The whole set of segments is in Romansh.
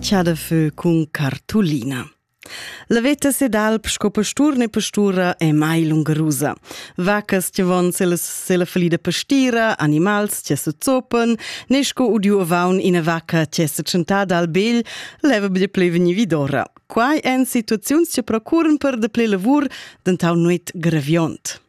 Chà da fö cun cartulina. La veta se d'alp sco pastur ne pastura è mai lungarusa. Vacas che von se la, se la falida pastira, animals che se zopen, ne sco udiu avaun ina vacca che se tschentada al begl, leva bde ple veni vidora. Quai èn situaziuns che procuren per de ple lavur dentau nuit greviont.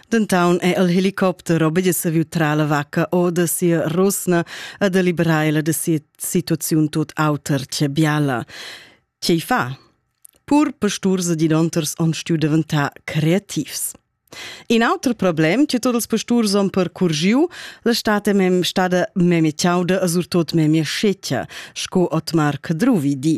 Dentoun è el helicopter obedi saviu tra la vacca o de sia rusna a deliberar la de sia situaziun tot auter che biala. Che fa? Pur pasturs di donters on stiu deventà creativs. In auter problem che tots els pasturs on percurgiu, la state mem stada memie ciauda a surtot memie sceccia, sco Otmar Cadruvi di.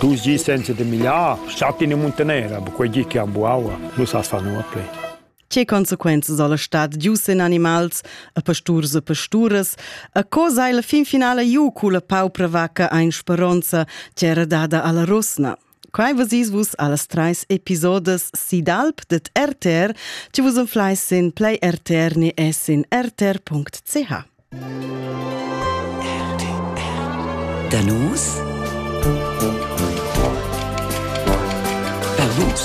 Du gi senza de migliar, statti in muntanera, bu quei gi che han buaua, lu sa fa nuot plei. Che consequenze soll stat gius in animals, a pasturs e pasturas, a co sei la fin finale giu cu la paupra vacca ein speronza, c'era dada alla rusna? Quai vesis vus allas trais episodes si d'alp ded RTR. Ti vus unflai sin Play RTR ni e sin rtr.ch. Da nus? Da nus.